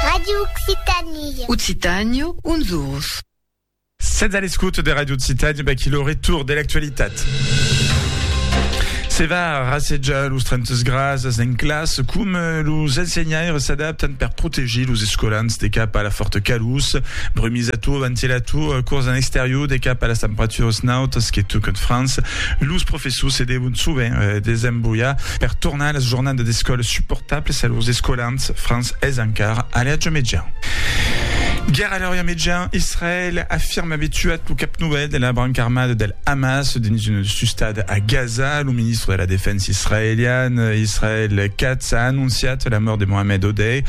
Radio Occitanie. Occitània, uns orus. Sètz a l'escouta de Radio Occitània, vaquí lo retour de l'actualitat. Se va rassejar los 30 grasas en classe, com eh, los ensenhaires s'adaptan per protegir los escolans de cap a la forta calús, brumisator, ventilator, eh, cors en exterior de cap a las temperaturas nautas que tocan França. Los professors se devon sovent eh, desembollar Per tornar las jornadas d'escòla suportablas a lors escolants, Franç es encara a l'Age Mejan. Guèrra a l'Orient Mejan, Israèl afirma aver tuat lo cap novèl de la branca armada del Hamas dins una sustada a Gaza. Lo ministre de la Defensa israelian, Israel Katz, a anonciat la mòrt de Mohamed Odeh,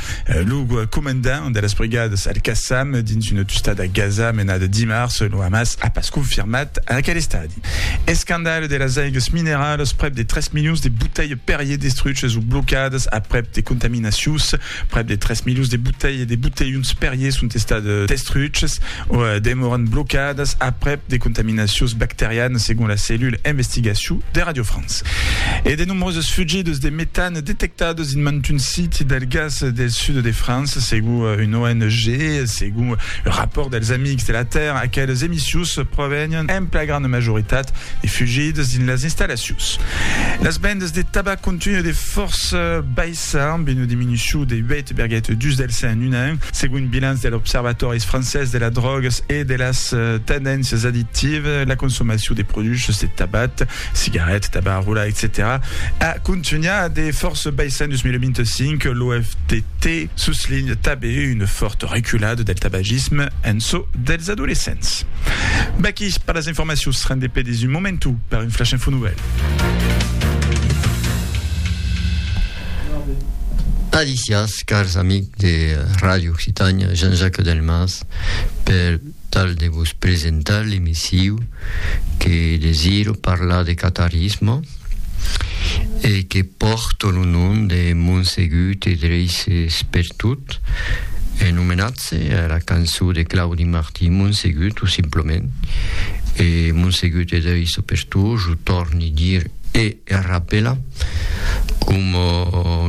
lo comandant de las brigadas Al-Qassam dins una tustada a Gaza menada dimars. Lo Hamas a pas confirmat aquel estadi. Escandalh de las aigues mineralas, prèp de 3 milions de botelhs Perrier destruches o blocadas aprèp de contaminacions. Prèp de 3 milions de botelhs de botelhons Perrier sont estats destruches o demòran blocadas aprèp de contaminacions bacterianas, segon la cellula investigacion de Radio France. E de nombroses fugidas de metan Detectat dins mantun siti del gas del sud de França, segon un ONG, segon un rapòrt dels Amics de la Tèrra, aqueles emissius provenián en pla granda majoritat de fugidas dins las installacions. Las vendas de tabac continuen de fòrça baissar, amb una diminucion de 8,2 del cent en un an, segon un bilanç de l'Observatòris francés de las drògas e de las tendéncias addictivas, la consomacion de produchs de tabac cigarèt, tabac a rolar, etcetèra a contunhar de fòrça baissar en 2025, l'OFDT soslinha tanben una fòrta reculada del tabagisme en çò dels adolescents. V'aquí per las informacions, rendé per dins un momentu per un flash info nouvèl. Alicias, cars amics de Ràdio Occitània, Jean-Jacques Delmas per tal de vos presentar l'emissiu que desiro parlar de catarisme e que pòrto lo nom de Monsegut e Dreisses per tot, en omenatge a la cançó de Claudi Martí, Monsegut, tot simplement, e Monsegut e Dreisses per tot, jo tòrni dir e rapelar, coma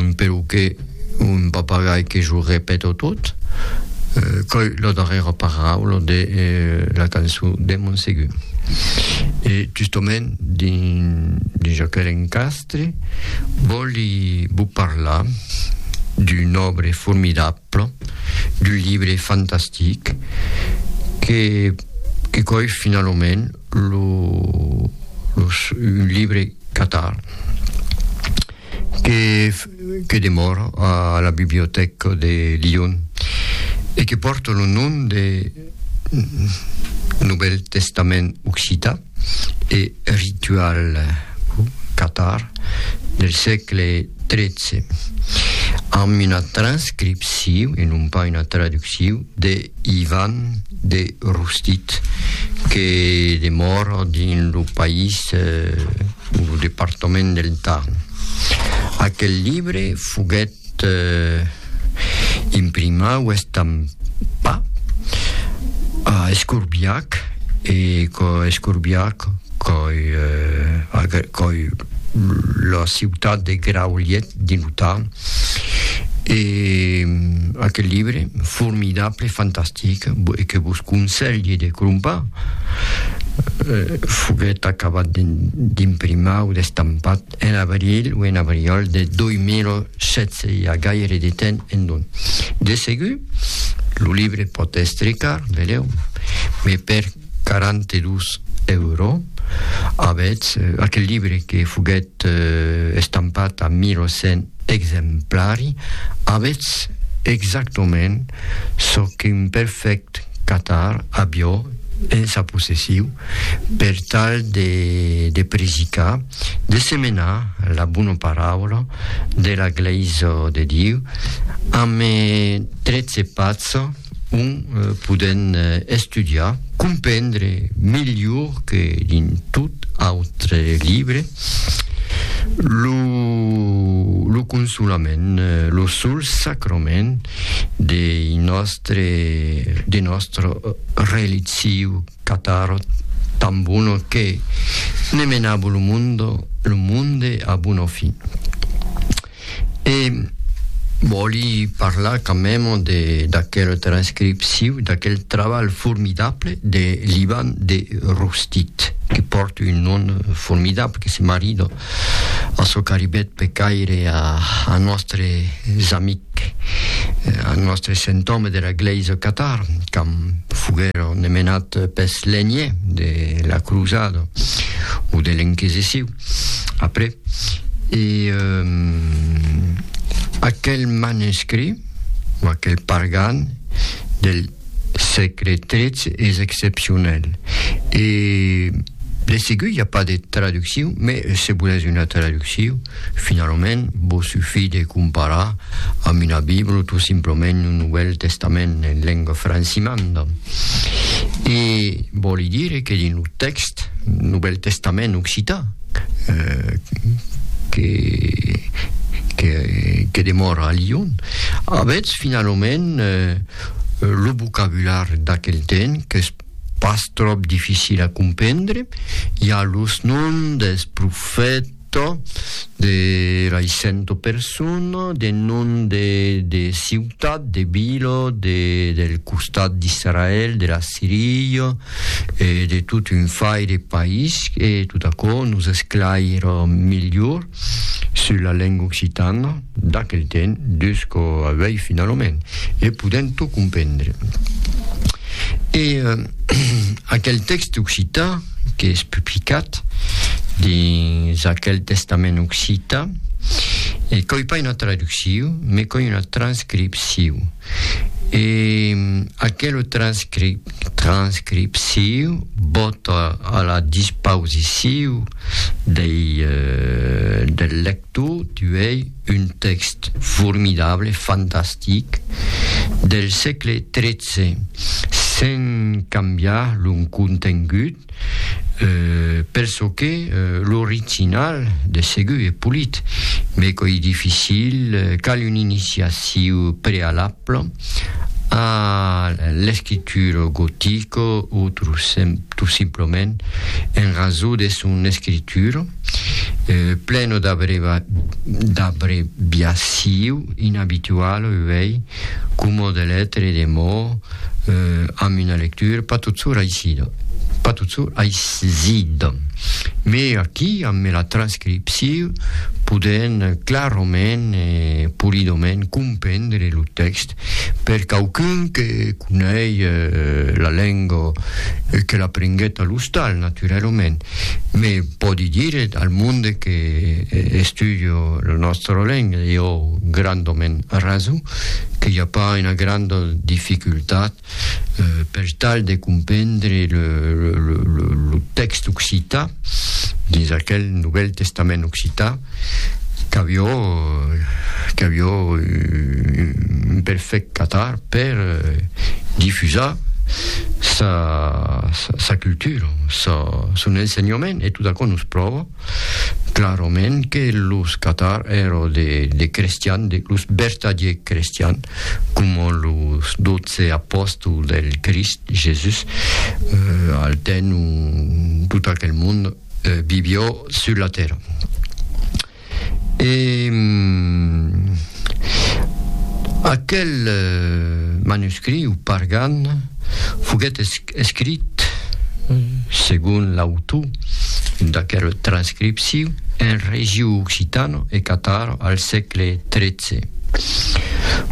un perroquet. Un papagai que jo repeto tot, qu'ei la darrèra paraula de la cançon de Montsegur. E justament dins aquel encastre vòli vos parlar d'un òbre formidable, d'un libre fantastic que qu'ei finalament lo lo un libre catar. que que demòra a la bibliotèca de Lion e que pòrta lo nom de Novèl Testament Occità e Ritual Catar del sègle XIII, amb una transcripcion e non pas una traduccion de Ivan de Rostit, que demòra dins lo país o lo departament del Tarn. Aquel libre foguèt imprimat o estampat a Escorbiac e còi Escorbiac còi la ciutat de Graulhet dins lo Tarn. E aquel libre formidable, fantastic, e que vos conselhi de crompar, foguèt acabat d'imprimar o d'estampat en abril o en abriòl de 2016, i a gaire de temps en don. De segur, lo libre pòt èstre car, velèu, me per 42 euro, avètz aquel libre que foguèt estampat a 1.100 exemplari, avètz exactament çò qu'un perfèct catar avió en sa possessiu per tal de de predicar, de semenar la bona paraula de la Glèisa de Diu, ame 13 patz. ont podèm estudiar, comprendre melhor que dins tot autre libre, lo consolament, lo sol sacrament de nòstre relitziu catar tan bona que ne menava lo monde a bona fin. E vòli parlar quand même de d'aquel transcripciu, d'aquel trabalh formidable de l'Ivan de Rostit, que pòrt un nom formidable, que se marida a çò qu'arribèt per caire a, a nòstres amics, a nòstres sentòmes de la glèisa catar, quand foguèron menats pes lenhiers de la crusada o de l'Inquisiciu. après. E euh, aquel manuscrit, o aquel pargan del sègle XIII es excepcionel. E de segur i a pas de traduccion, mais se volètz una traduccion, finalament vos sufí de comparar amb una Bibla, tot simplament un Novèl Testament en lenga francimanda. E vòli dire que dins lo Tèxt, Novèl Testament occitan, que demòra a Lion. Avètz finalament lo vocabular d'aquel temps qu'es pas tròp dificil a comprendre, i a los noms dels profètas, Tò, de lai cento persona, de non de de ciutat, de vila, de del costat d'Israèl, de la Siria, e de tot un fai de país, e tot aquò nos esclaira melhor sus la lenga occitana d'aquel temps, dus quò avèi finalament, e podèm tot comprendre. E aquel tèxte occitan, qu'es publicat dins aquel testament occita, e coi pas una traducciu, me coi una transcripciu. E aquelo transcrip, transcripciu vòt a la dispausiciu dei, del lector, tuei, Un tèxt formidable, fantastic, del sègle tretze, sen cambiar lo contengut, pel çò que l'original de segur es polit, mai qu'oi dificil, cal un iniciaciu prealable a l'escritura gotica o tot simplement en rason de son escritura. pleno d'abreviaciu inabitual, uei, coma de letre e de mots, amb una lectura pas totsur aisida, pas totsur aisida. Me aquí, amb la transcripciu, podèn clarament e polidoment comprendre lo tèxt Per quauqu'un que conei la lenga e que l'aprenguèt a l'ostal, naturalament, me pòdi dire al monde que estudio la nòstra lenga, e ò grandament rason, que i a pas una granda dificultat per tal de comprendre lo tèxt occitan dins aquel Novèl Testament occitan, qu'avió un perfèct catar per difusar sa cultura, son ensenhament, e tot aquò nos pròva. clarament que los catar èro de de crestian de los bertadier crestian coma los dotze apostol del crist jesus eh, al temps o tot aquel monde eh, vivió sur la terra e aquel eh, manuscrit o pargan foguèt escrit escrit, segon l'autor d'aquela transcripcion, en regiu occitano e cataro al sègle tretze.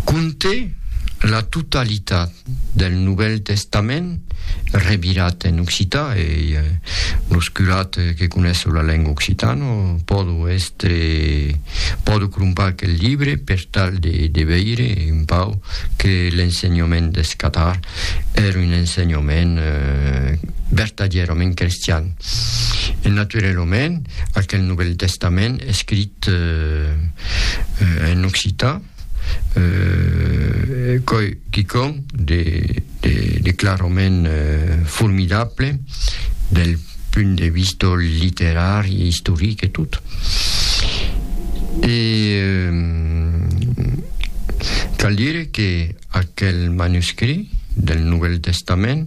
Conte la totalitat del Novèl Testament revirat en occità e los curats que conesso la lenga occitana pòdo èstre pòdo crompar aquel libre per tal de veire un pauc que l'ensenhament deth catar èr un ensenhament vertadièrament crestian. E naturelament, aquel Novèl Testament escrit en occitan, coi quicòm de de clarament formidable del punt de vista literari, istoric e tot. E cal dire que Aquel manuscrit del Novèl Testament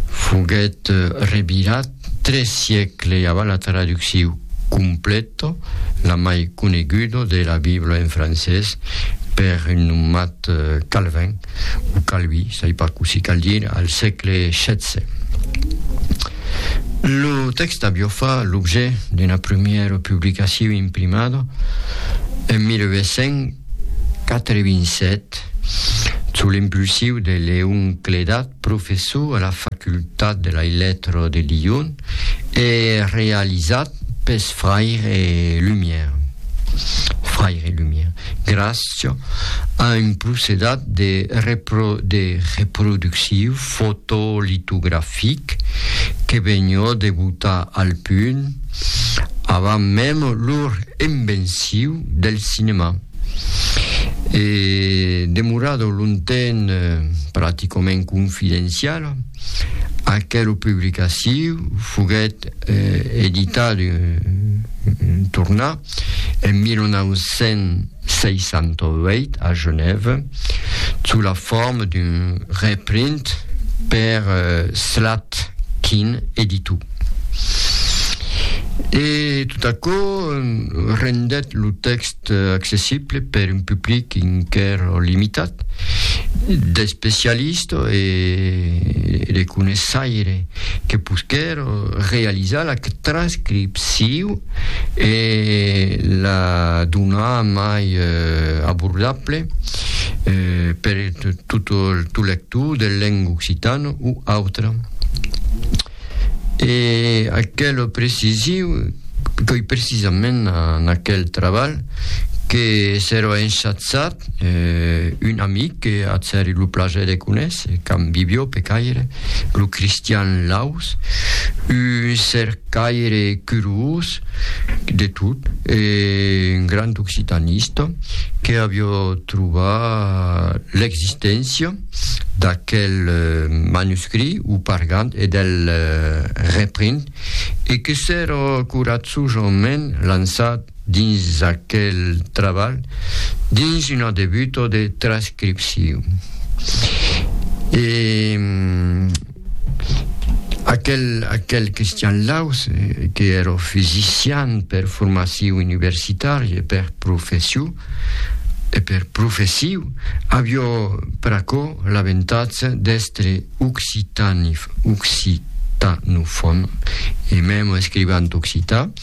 foguèt revirat tres siècles avant la traducciu completa, la mai coneguda, de la Bibla en francés per un nomat Calvin, o Calvi, sai pas cossí cal dire, al sègle xvi. Lo tèxt aviá fa l'objet d'una primièra publicaciu imprimada en 1800, 87, sous l'impulsiu de Leon Clédat, professor a la Facultat de lai Lettres de Lyon, e realizat pes fraire Lumière, Fraire Lumière, gràcia a un procedat de reproducciu fotolitografic que venhó debutar al punt, avant mèm lor envenciu del cinèma. E demorado longtemps practicament confidenciala, aquela publicaciu foguèt editadu, tornat, en 1968 a Genève sous la forma d'un reprint per Slatkin Editou. E tot aquò rendèt lo tèxt accessible per un public enquèra limitat d'especialistas e de coneissaires que posquèron realizar la transcripcion e la donar mai abordable per tot lo lector de lenga occitana o autra. E aquel precisi qu'ei precisament en aquel trabalh que serà enchatzat eh, un amic que atz èri lo plaser de conéisser, qu'am Bibió Pecaire, lo Cristian Laus, un cercaire curiós de tot e un grand occitanista, que avió trobat l'existéncia d'aquel manuscrit o pargant e del reprint e que s'èra coratjosament lançat dins aquel trabalh dins una debuta de transcripcion. E aquel, aquel Christian Laus, que era fisician per formacion universitària e per profession, e per professiu, avió pr'aquò l'avantatge d'èstre occitanif, occitanofòn, e mèm escrivant occitan,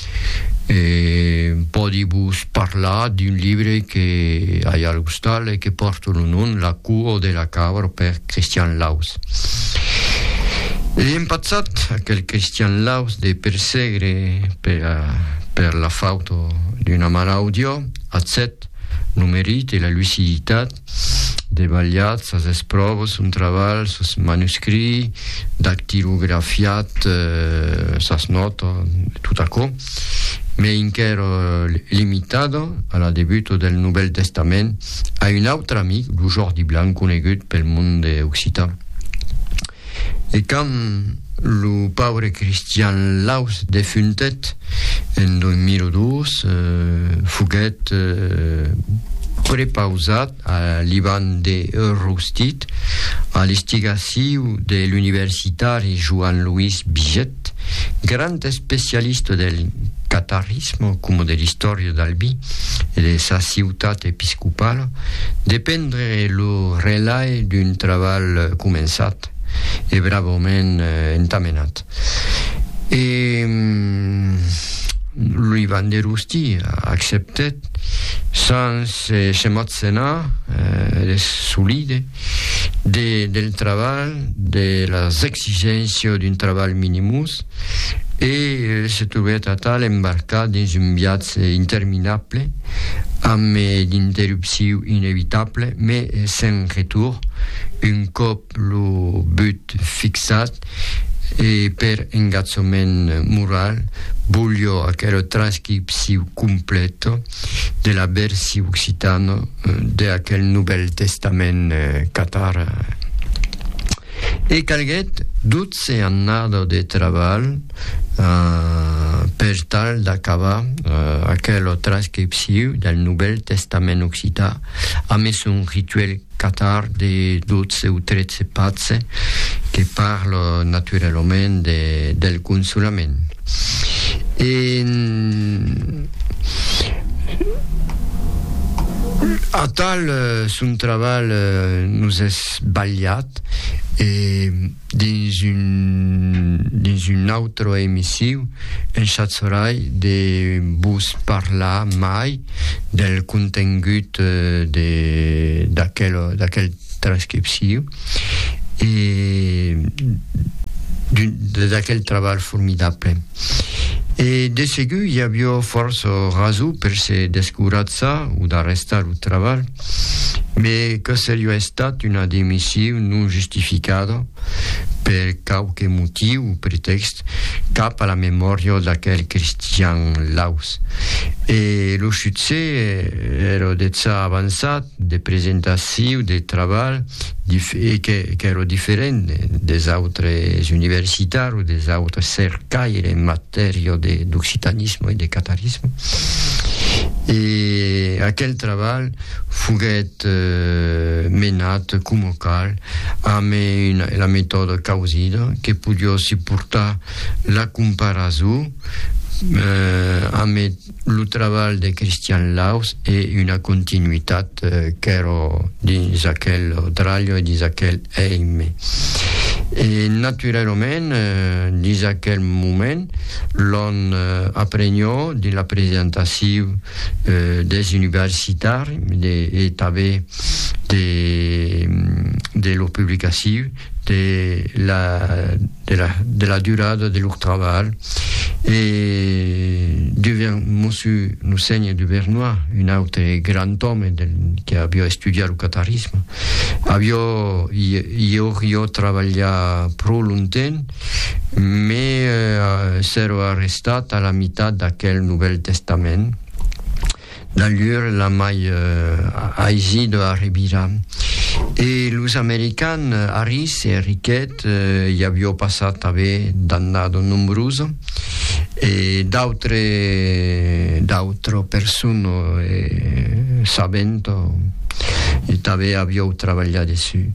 E pòdi vos parlar d'un libre que ai al ostal e que pòrte lo nom La cour de la cabra per Christian Laus. Ei empatzat aquel Christian Laus de persegre per per la fauto d'una man audiò, ath sèt, lo merit e la luciditat, debalhat sas espròvas, son trabalh, sos manuscrits, dactilografiat sas nòtas, tot aquò, mai enquera limitada a la debuta del Novèl Testament, a un autre amic, lo Jordi Blanc, conegut pel monde occitan. E quand lo paure Christian Laus defuntèt en 2002, foguèt prepausat a l'Ivan de Roustit, a l'instigaciu de l'universitari Joan Luís Biget, Cat, grand especialista del catarisme coma de l'istòria d'Albi e de sa ciutat episcopala, de prendre lo relai d'un trabalh començat e bravament entamenat. E Louis Vanderhoosty acceptèt, sens se motzenar de solide, de, del trabalh, de las exigéncias d'un trabalh minimus, e se trobèt atal embarcat dins un viatge interminable, amb d'interrupciu inevitable, me sen retour, un còp lo but fixat, e per engatjament moral, bolhó aquel transcripciu complet, de la versi occitana de aquel Novèl Testament catar. E calguèt 12 annada de trabalh per tal d'acabar aquela transcripciu del Novèl Testament occitan. A mès un rituèl catar de dotze o tretze patze que parla naturalament de, del consolament. E atal son trabalh nos es balhat e. dins un dins un autre emissiu en chatzorai de vos parlar mai del contengut de d'aquel d'aquel transcripciu e d'un d'aquel trabalh formidable e de segur i avió fòrça raso per se descoratza o d'arrestar lo trabalh Mes que serió estat una demission non justificada per quauque motiu o pretèxt cap a la memòria d'aquel Christian Laus. E lo succès èra dejà avançat de presentaciu de trabalh e qu'èra diferent des autres universitars o des autres cercaires en Tèrio de d'occitanisme e de catarisme e aquel trabalh foguèt menat coma cal amb la metòda causida que podió se portar la comparason amb Lo trabalh de Christian Laus e una continuitat qu'èro dins aquel Odralho e dins aquel Eime. E naturalament, dins aquel moment, l'on aprenhó dins la presentaciu des universitari e tanben de lo publicaciu de la de la de la durada de lor trabalh e duvien mossu lo senhe Duvernoy un aute grand òme del que avió estudiat lo catarisme avió i aurió trabalhat pro longtemps me s'èro arrestat a la mitat d'aquel Novel Testament D'allur la mai aisi de arribira. E los american Harris e Rickett i avió passat ave d'annada nombrosa e d'autre d'autra persona e sabent e tave avió trabalhar dessu.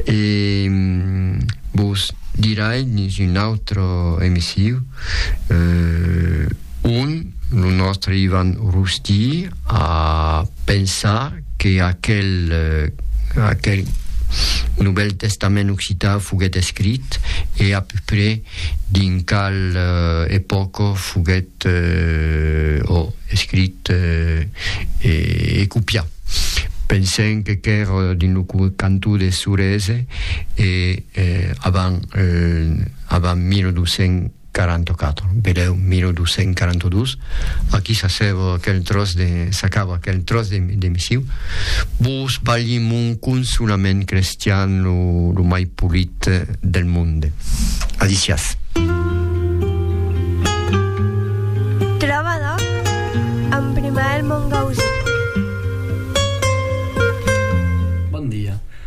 E vos dirai dins un autre emissiu. ont lo nòstre Ivan Rusty a pensar que aquel aquel Novèl Testament occitan foguèt escrit e a peu près dins qual epòca foguèt o escrit e copiat. Pensèm que qu'èr dins lo cantó de Sorèse e avant avant 1200 44, velèu, 1242, aquí s'assèva aquel tròç de, s'acaba aquel tròç de, de missiu. Vos balhi mon consolament crestian lo, lo mai polit del monde. Adicias.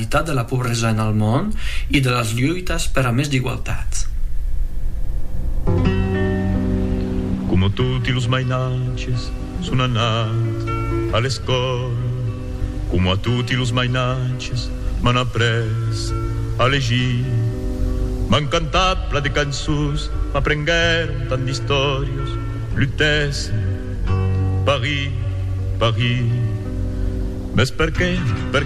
realitat de la pobresa en al mond e de las luitas per a mès d'igualtat. Coma toti los mainatges, son anat a l'escòla. Coma toti los mainatges, m'an après a legir. M'an cantat plan de cançons, m'aprenguèron tant d'istòrias. Lutèssen, Paris, Paris. Mès perqué, perqué.